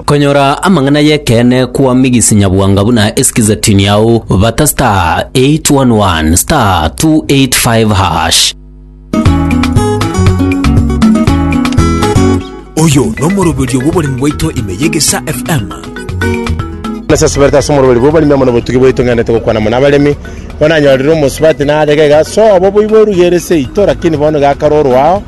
Konyora amang'ana y'ekeene kwa Migisi Nyabwanga buna esikize tini yao bata star 811 star 285 hash. oyo nomoroberio bw'oboremi bwaito ime y'egesa fm Nase asibete ase omoroberi bw'oboremi amo nobotugi bwaito ng'endete gokwana mono abaremi bono nanyorire omosubati narege iga sobo boiborugerese ito lakini bono iga akarorwa ao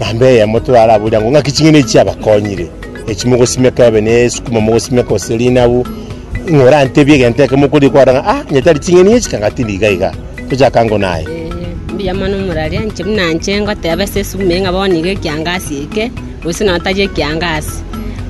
Mambia eyemo twaraboria ng'o ng'aki ching'eni echi chiabakonyire, echi mogosimeka ebe nesukuma mogosimeka gose rinabu, ng'a orantebie egento eke mokoria kwara ng'a ah, onye tari ching'eni echi kanga tindi iga iga, toche aka ngo naye. Mbuya mono omorari anche buna inche ngoteba ase esuguma eye ng'a bono iga ekiangasi eke, gose nonya tari ekiangasi.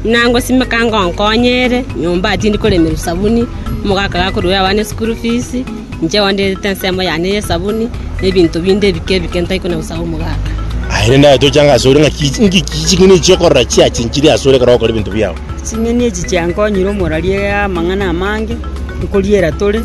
Buna ngosimeka ngonkonye ere, nyomba tindi koremerwa esabuni, omogaka gakoruera abana eschool fees, Inche gwandiirete ensemo yane y'esabuni, na ebinto binde ebike ebike ntaikona gosaga omogaka. Aye rende aye toche ang'e asore ng'aki nki ki ching'eni echi okorora chiachinchirie asore ekero ogokora ebinto biao. Ching'eni echi chiankonyire omorarie amang'ana amange, nkoriera tore,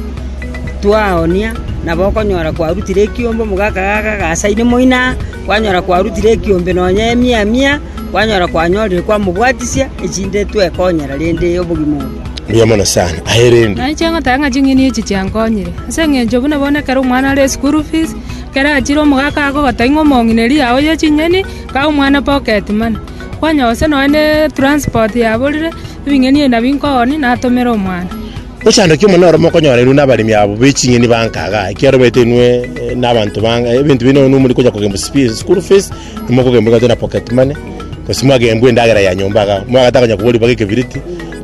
twaoonia, nabo okonyora kwarutire ekiombe omogaka gaka agasaini moino aa, kwanyora kwarutire ekiombe nonya emia mia, kwanyora kwanyorire kwamobwatisia, echinde twekonyera rende obogima obo. Mbuya mono sana. Aye rende. Naye chingotaka ng'a ching'eni echi chiankonyire, ase engencho buna bono ekero omwana are eschool fees, ekero achire omogaka akogota ing'o omong'ineri yao ye ching'eni, kaa omwana pocket money. Kwanya gose nonya ne transport yaborire, ebing'eni ebi nabio nkooni natomere omwana. Ochandokia omonene ore mokonyora inwe nabaremi abo be ching'eni bankaga, ekiagera omanyete inwe eh, nabanto banga, ebinto binde bono muri konya kogenda school fees, Mokogenbwa egati na pocket money, gose mwagenbwa endagera ya nyomba iga iga. Mwagacha konya kobori mpaka ekebiriti,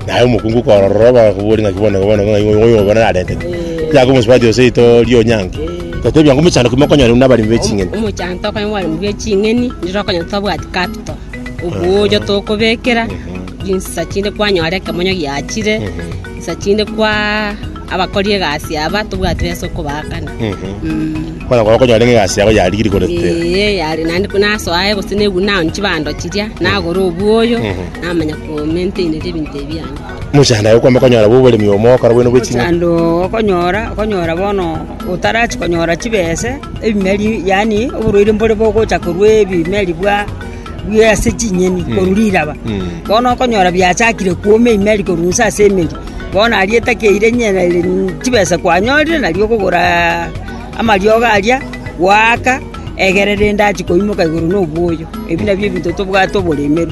naye omokungu okorora ororo bakakobori ng'aki bono iga bono ng'ai oyo oyo bono narenteti. Tiga komosubati gose rito ria onyangi. Gatebia ng'a omochando ki mokonyora buna abaremi be ching'eni? Omochando tokonyora buna abaremi be ching'eni, riro okonyora totabwati capital, obuoyo tokobekera, rinsa chinde kwanyora ekemonyo giachire, rinsa chinde kwaa. Abakori egasi aba tobwati besa okobaakana. Bono ekero okonyora ng'a egasi yago yarigia rikorete, Ee, yare naende ko nasoa aye gose negwe naoni chibando chiria, nagora obwoyo, namanya komaintainiria ebinto ebi biane. mochando aye okwama konyora bwa oboremi obo mogokora bwene bwe ching'aki. Omochando okonyora, okonyora bono otarachi konyora chibese, ebimeri yaani oborwaire mbore bogocha korwa ebimeri bwa. bwire ase chinyeni korwa riraba. Bono okonyora biachakire kwoma eimeri korwa inse ase emeri, bono aria etakeire nyere chibesa kwanyorire nario okogora amariogo aria, gwaaka egere rende achi koimoka igoro na obwoyo. Ebi nabio ebinto tobwate oboremeru.